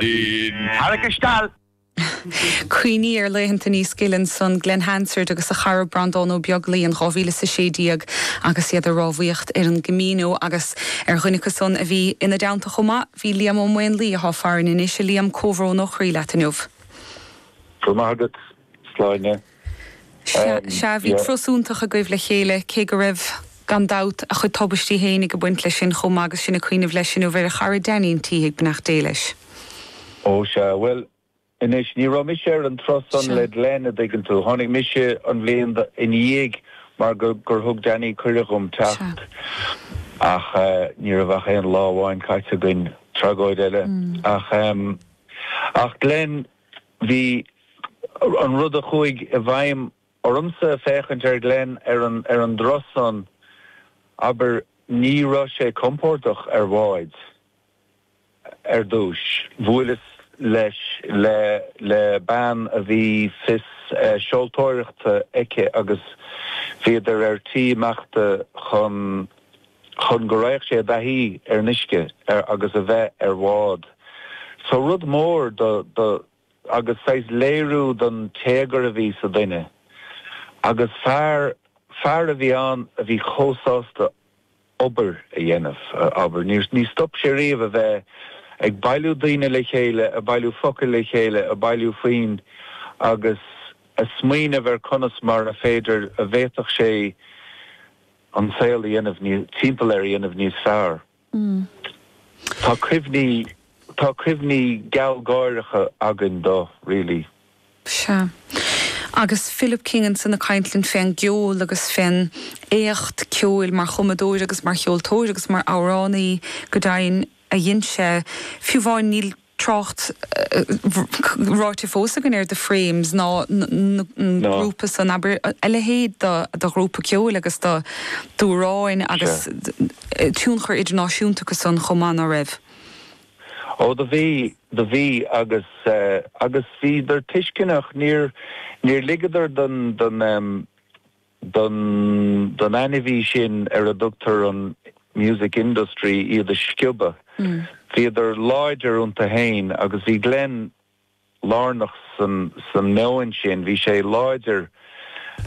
Sin tarrac isteall! Cuimhnigh ar laethanta níos gile ansan, Glen Hansard agus a chara Brandán Ó Beaglaoi in dhá mhíle is a sé déag agus iad ag rámhaíocht ar an gCamino agus ar dhuine acusan a bhí ina dteannta chomh maith bhí Liam Ó Maonlaí, athá farainn anois a Liam, comhbhrón ó chroí leat inniu. Go raibh maith agat. sláine. Sea, bhí turas suntasach agaibh le chéile, cé go raibh, gan dabht, a chuid tubaistí féin ag a baint leis sin chomh maith agus sin ag cuimhneamh leis inniu ar a chara Danny Mhic Síthigh, beannacht Dé leis. Ó, sea, bhuel, anois, ní raibh mise ar an turas san le Glenn, a dtuigeann tú. Tháinig mise an bhliain ina dhiaidh mar gur thug Danny cuireadh dhom teacht, ach ní raibh ach aon lá amháin caite againn, tragóid eile. Ach, ach Glenn, Bhí an rud a chuaigh i bhfeidhm ormsa a' féachaint ar Glenn ar an dturas san, abair, ní raibh sé compordach ar bhád ar dtúis. Bhuaileas leis le, le bean a bhí fios seoltóireachta aici agus bhíodar ar tí imeachta chun chun go raghadh sé i dtaithí ar an uisce agus a bheith ar bhád. So rud mór dó, dó, agus saghas léiriú don téagar a bhí sa duine. Agus fear, fear a bhí ann a bhí chomh sásta obair a dhéanamh, abair. Níor, níor stop sé riamh a bheith ag bailiú daoine le chéile, a' bailiú focail le chéile, a' bailiú foinn agus a' smaoineamh ar chonas mar a féidir, a bhféadfadh sé, an saol a dhéanamh níos, timpeall air a dhéanamh níos fearr. Tá cuimhní, tá cuimhní gealgháireacha againn dó, really. Sea. Agus Philip King ansan ag caint linn fén gceol agus fén éacht ceoil mar chumadóir agus mar cheoltóir agus mar amhránaí, go deimhin. a dhein sé, fiú amháin, níl trácht ráite fós againn ar The Frames ná an grúpa san, abair, a leithéid de ghrúpa ceoil agus d'amhráin agus tionchar idirnáisiúnta acusan chomh maith, ná raibh? Ó, do bhí, do bhí agus, agus bhíodar tuisceanach, níor, níor ligeadar don, don, don ainmhí sin ar a dtugtar an music industry iad a sciobadh. Bhíodar láidir iontu fhéin agus bhí Glenn lárnach san meoin sin. Bhí sé láidir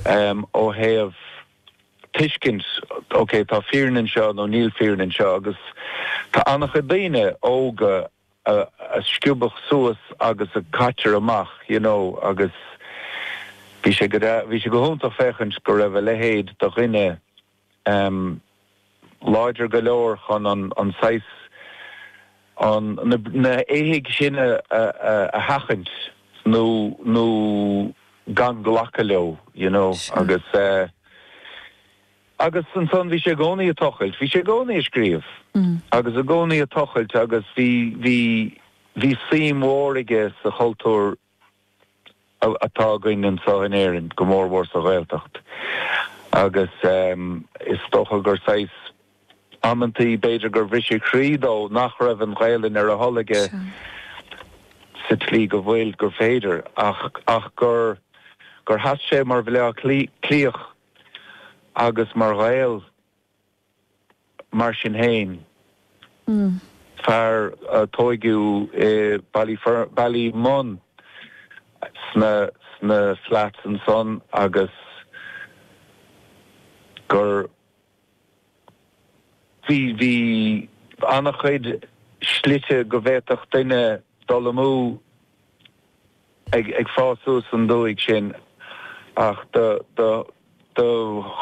ó thaobh tuiscint, ok, tá fírinne anseo nó níl fírinne anseo agus tá an-chuid daoine óga, a sciobadh suas agus a caitear amach you know agus bhí sé go bhí sé go hiontach féachaint go raibh a leithéid de dhuine ehm láidir go leor chun an an saghas an na na éithigh sin a sheachaint nó nó gan glacadh leo you know agus eh Agus ansan, bhí sé i gcónaí ag tochailt, bhí sé i gcónaí ag scríobh agus i gcónaí ag tochailt agus bhí, bhí, bhí suim mhór aige sa chultúr atá againn anseo in Éirinn, go mór mhór sa Ghaeltacht agus is dócha gur saghas, amantaí, b'fhéidir gur bhriseadh croí dó nach raibh an Ghaelainn ar a thoil aige sa tslí go bhfuil, gur féidir ach, ach gur, gur sheas sé mar Bhaile Átha Cliathach. Agus mar Ghael, mar sin féin, fear a tóigeadh i Ballymun sna flats ansan agus gur. Bhí, bhí an-chuid slite go bhféadfadh duine dul amú ag fás suas an dúthaigh sin, ach do, do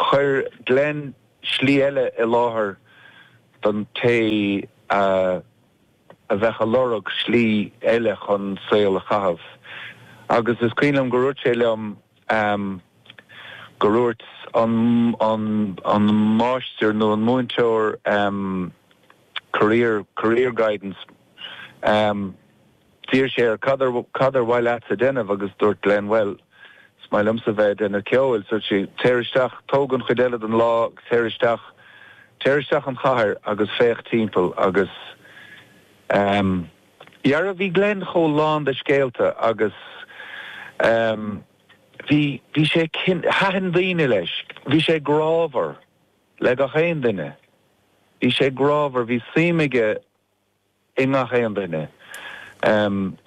chuir Glen slí eile i láthair don té a. a bheadh ag lorg slí eile chun saol a chaitheamh agus is cuimhin liom go rúirt sé liom go rúirt an an an máistir nó an múinteoir career career guidance d'iarr sé air cad ab cad ab mhaith leatsa a dhéanamh agus dúirt Glen bhuel Is maith liomsa bheith ag déanamh ceoil, dúirt sé. Téir isteach, tóg an chuid eile den lá, téir isteach, téir isteach sa chathair agus féach timpeall agus ehm, dheara, bhí Glen chomh lán de scéalta agus ehm, bhí, bhí sé, thaitin daoine leis, bhí sé grámhar le gach aon duine, bhí sé grámhar, bhí suim aige, i ngach aon duine.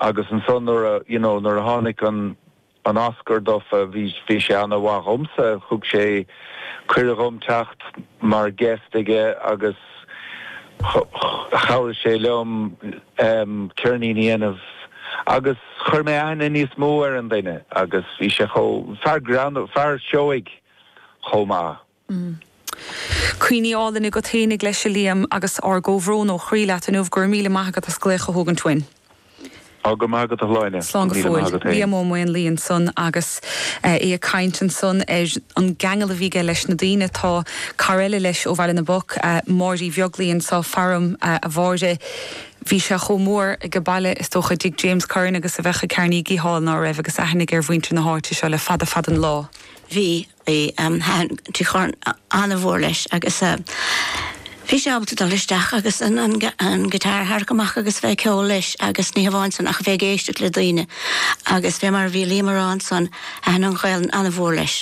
Agus ansan nuair a, you know, nuair a tháinig an, an Oscar dó, bhí, bhí sé an-mhaith dhomsa, thug sé cuireadh dhom teacht mar guest aige agus chabhraigh sé liom ceirnín a dhéanamh agus chuir mé aithne níos mó ar an duine agus bhí sé chomh, fear greannmhar, fear seoigh chomh maith. Mm. Cuimhní álainn agat féinig leis, a Liam, agus ár gcomhbhrón ó chroí leat inniu. Go raibh míle maith agat as glaoch a thógaint uainn. Tá go maith agat, a Shláine. Slán go fóill. Liam Ó Maonlaí ansan agus é ag caint ansan ar an gceangal a bhí aige leis na daoine. Tá cara eile leis ó Bhaile na bPoc, Máire Uí Bheaglaoich anseo. Fear um a Mháire, bhí sé chomh mór age baile, is dócha, i dtigh James Curran agus a bheadh i gCarnegie Hall, ná raibh? Agus aithne aige ar mhuintir na háite seo le fada fada an lá. Bhí. Bhí thaitin tigh Churran an-mhór leis agus bhí sé ábalta dul isteach agus an guitar a tharrac amach agus a bheith ag ceol leis agus ní hamháin san ach a bheith ag éisteacht le daoine agus fé mar a bhí Liam a rá ansan thaitin an Ghaelainn an-mhór leis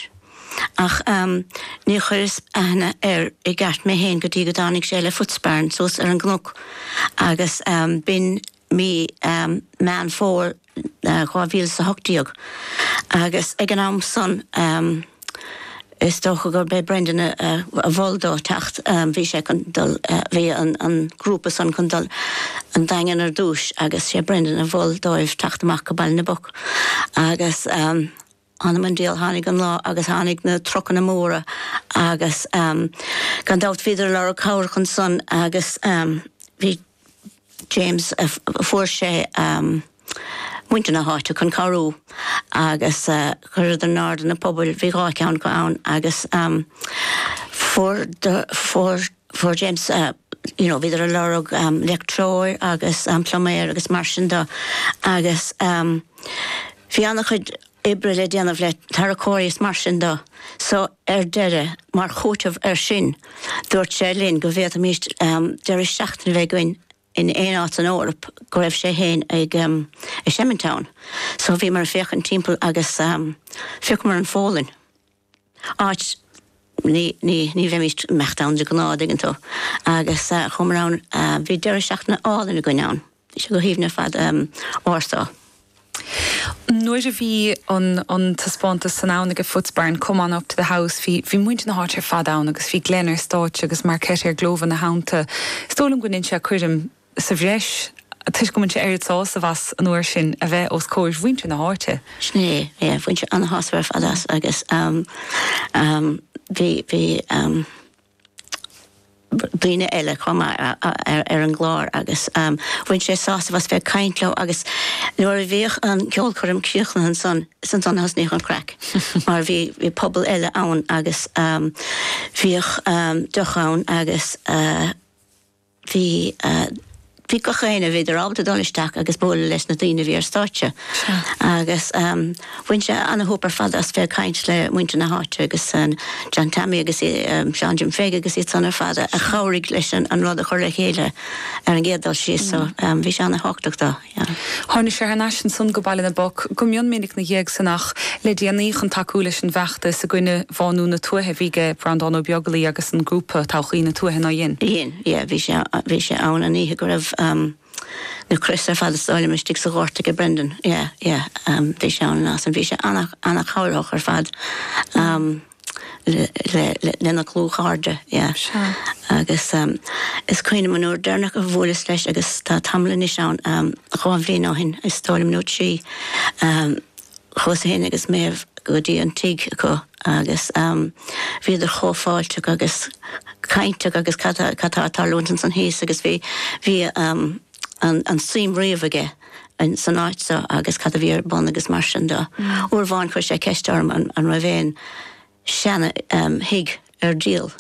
ach níor chuireas aithne air i gceart mé fhéin go dtí go dtáinig sé le Footsbarn suas ar an gcnoc agus b'in mí Meán Fómhair 2018 agus ag an am san is dócha gurb é Brendan a mhol dó teacht, bhí sé chun dul, bhí an grúpa san chun dul an Daingean ar dtúis agus sé Brendan a mhol dóibh teacht amach go Baile na bPoc agus. Anam an diabhal, tháinig an lá agus tháinig na trucanna móra agus gan dabht bhíodar ag lorg cabhrach ansan agus bhí James, fuair sé muintir na háite chun cabhrú agus chuireadar in airde na pubaill, bhí dhá cheann acu ann agus fuair, fuair, Fuair James, you know, bhíodar a' lorg leictreoir agus pluiméir agus mar sin do agus bhí ana-chuid oibre le déanamh le tarracóirí is mar sin do so ar deireadh mar chúiteamh ar sin dúirt sé linn go bhféadfaimíst deireadh seachtaine bheith againn in aon áit san Eoraip go raibh sé fhéin ag, ag seimint ann. So bhíomar ag féachaint timpeall agus phiocamar an Pholainn. áit ní bheimis ag imeacht ann de ghnáth, dtuigeann tú. Agus chuamar ann, bhí deireadh seachtaine álainn againn ann, bhí sé go haoibhinn ar fad. Warsaw. Nuair a bhí an taispeántas san ann aige, Footsbarn, Come On Up to the House, bhí muintir na háite ar fad ann agus bhí Glen ar stáitse agus Markéta Irglová ina theannta. Is dóigh liom go ndein sé coirm. sa bhreis, toisc go mbain sé oiread sásaimh as an uair sin a bheith os comhair mhuintir na háite. Sin é, yeah, bhain sé an-shásamh ar fad as agus bhí, bhí daoine eile chomh maith ar an gclár agus bhain sé sásamh as bheith ag caint leo agus nuair a bhíodh an ceolchoirm críochnaithe ansan, is ansan a thosnaíodh an chraic mar bhí, bhí puball eile ann agus bhíodh deoch ann agus. bhí, bhí gach éinne, bhíodar ábalta dul isteach agus bualadh leis na daoine a bhí ar stáitse. Sea. Agus bhain sé an-shúp ar fad as bheith ag caint le muintir na háite agus John Tammy agus Seán Jim Pheig agus iad san ar fad a chabhraigh leis an rud a chur le chéile ar an gcéad dul síos so bhí sé ana-thábhachtach dó. Tháinig sé thar n-ais ansan go Baile na bPoc go mion minic 'na dhiaidh san ach le déanaí chun tacú leis an bhfeachtas i gcoinne bhánú na tuaithe a bhí aige Breandán Ó Beaglaoi agus an grúpa, Todhchaí na Tuaithe, nár dhein. Dhein, yeah. Bhí sé, bhí sé ann an oíche go raibh na crosa ar fad a stáileadh istigh sa ghort aige Brendan. Yeah, yeah. Bhí sé ann an lá san. Bhí sé ana-chabhrach ar fad. lena dhlúthchairde, yeah. Sea. Agus is cuimhin liom an uair deireanach a bhuaileas leis agus tá tamall anois ann, dhá bhliain ó shin, is dóigh liom, nó trí. Chuas fhéin agus Méabh go dtí an tigh acu agus bhíodar chomh fáilteach agus cainteach agus cad tá ag tarlúint ansan thíos agus bhí, bhí an-shuim riamh aige, insan áit seo agus cad a bhí ar bun agus mar sin de. Uair amháin chuir sé ceist orm an raibh aon seana-thigh ar díol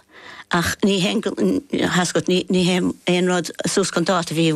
ach ní haon, tá's agat, ní haon rud suas gan dabht a bhí i.